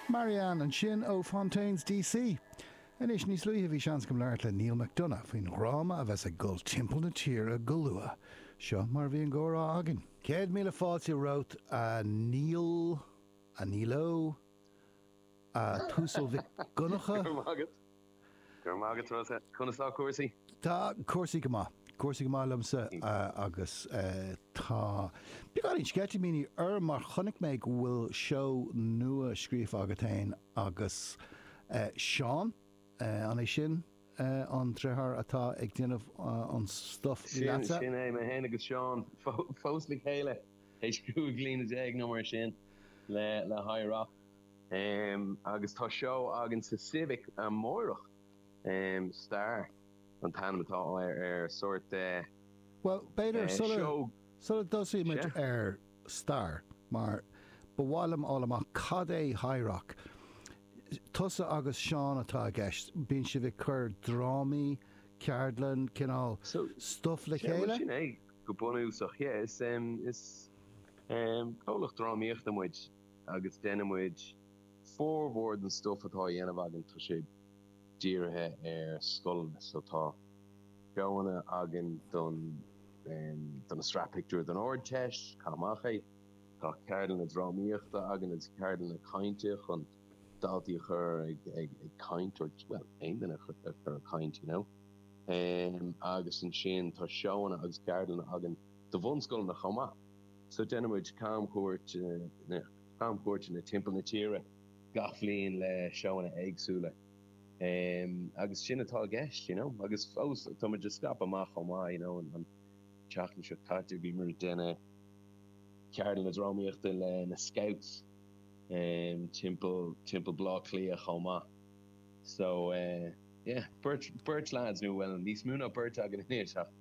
Marianne, ansin ó Fontaines D.C. Anois, níos luaithe bhí seans agam labhairt le Neil McDonough faoin dhráma a bheas ag dul timpeall na tíre go luath. Seo mar a bhí an gcomhrá againn. Céad míle fáilte romhat a Neil, a Neilo, A Uasail Mhic Dhonnacha. Go raibh maith agat. Go raibh maith agat, Rosa. Conas tá cúrsaí? Tá cúrsaí go maith. Cúrsaí go maith liomsa agus tá beagáinín sceitimíní orm mar chonaic mé go bhfuil seó nua scríofa agat fhéin agus Seán, an é sin an dritheár atá ag déanamh an stuif leatsa? Sin é, mé fhéin agus Seán. Fós le chéile théis cúig bhliana déag nó mar sin le High Rock. Em agus tá seó againn sa Civic amáireach. Em Stair an t-ainm atá air sort eh. Bhuel b'fhéidir eh sular dtosaímid ar Stair mar ba mhaith liom fháil amach cad é High Rock. Tusa agus Seán atá i gceist, bíonn sibh ag cur drámaí, ceardlann, cineál stuff le chéile? So, sea bhuel sin é go bunúsach. Yeah is em is em comhlacht drámaíochta muid. agus déanann muid formhór den stuff atá á dhéanamh againn tá sé dírithe ar scoileanna so tá seóanna againn don do na sraith pictiúr don Ardteist, caith amach é, tá ceardlanna drámaíochta againn agus ceardlanna cainte chun daltaí a chur ag ag ag caint or bhuel aon duine a chur ag caint you know em agus ansin tá seóanna agus ceardlanna againn do bhunscoileanna chomh maith. So déanaimid camchuairteanna timpeall na tíre gach bhliain le seóanna éagsúla agus sin atá i gceist you know agus fós táimid a' scaipeadh amach chomh maith you know an tseachtain seo caite bhíomar a' déanamh ceardlanna drámaíochta le na Scouts timpeall, timpeall Blá Cliath chomh maith so yeah beirt, beirt lads nó bhuel níos mó ná beirt againn anois ach.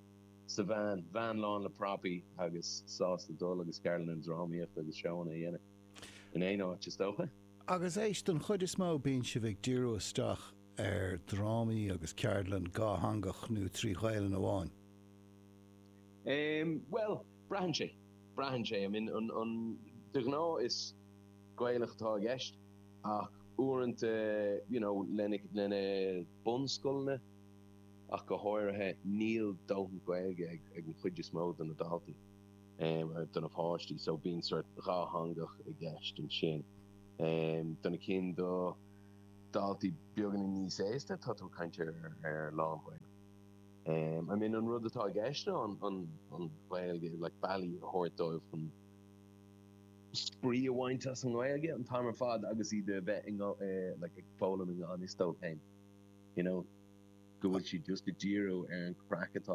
sa veain, veain lán le prapaí agus sásta dul agus ceardlanna drámaíochta agus seóanna a dhéanamh in aon áit is dócha. Agus éist, don chuid is mó bíonn sibh ag díriú isteach ar drámaí agus ceardlann dhátheangach nó trí Ghaelainn amháin? Em, bhuel, braitheann sé, braitheann sé. I mean, an, an, de ghnáth is Gaelach atá i gceist ach uaireanta, you know, lena, lena bunscoileanna, ach go háirithe, níl dóthain Gaeilge ag an chuid is mó de na daltaí, or de na páistí, so bíonn sort dhátheangach i gceist ansin. Do na cinn, do dhaltaí beagáinín níos aosta, tá tú ag caint ar lán-Ghaeilge. I mean an rud atá i gceist ná an Ghaeilge, like bealaí a thabhairt dóibh chun. spraoi a bhaint as an nGaeilge an t-am ar fad agus iad a bheith like ag foghlaim i ngan fhios dóibh féin you know go bhfuil siad just ag díriú ar an chraic atá